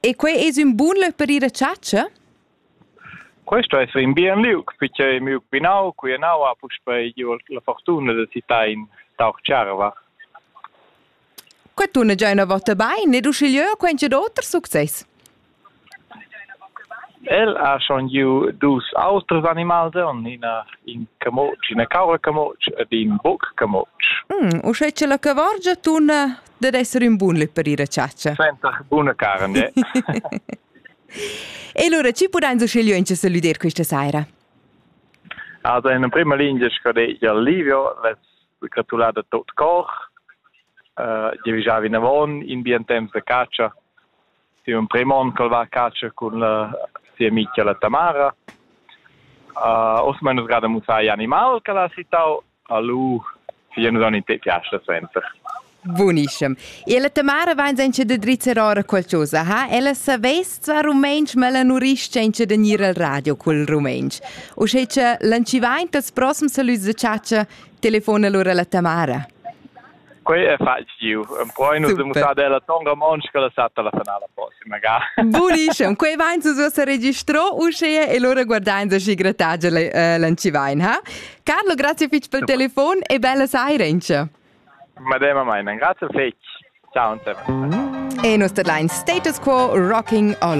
E quei es ün bun löc per ir a chatscha? Questo es ün bien liug, perche miu binau, quienau, ha puspei giu la fortuna da sittain tauch Tscharva. Qua tuna già üna vota bain ed uschigliö quaincha d'oters success. El ha schon giu dus auters animals donn, ina in camutsch, ina caura-camutsch ed in buc-camutsch. Uschè che la cavorgia tunna dad esser ün bun lö per ir a chatscha. Senta buna carn, de. E lura ci pudain su scegliuench a salüder questa saira? Also in prima linea scorreggia Livio, les gratulate a tot cor. Uh, Io visavi in avon in bien temps de caccia. Siu emprem onn ch'el va a catscha cun sia mitga la Tamara. Uh, oz mein nus gerade mussai animal che l'ha citau a lu sia nus non te piace senza. Bunischem. E la Tamara vain senza da drizzar ora qualcosa, ha? Ella savess zvar rumeinch, ma la nu risch senza da gnir al radio cul rumeinch. O sche cha lancivaint als prossums salüds da chatcha, telefona lura la Tamara. Quei ei fatg giu. Empruein nus de mussar della tonga montscha la satta la finala prossima ga. Buniscem, quei vain se uossa registro uschea e lura guardain da schi gratagi l'ancivain, ha? Carlo, grazie fitch pel telefon e bella saira ince. Madema meinen, grazie fetch. Ciao, und servus. E nos deadline status quo rocking all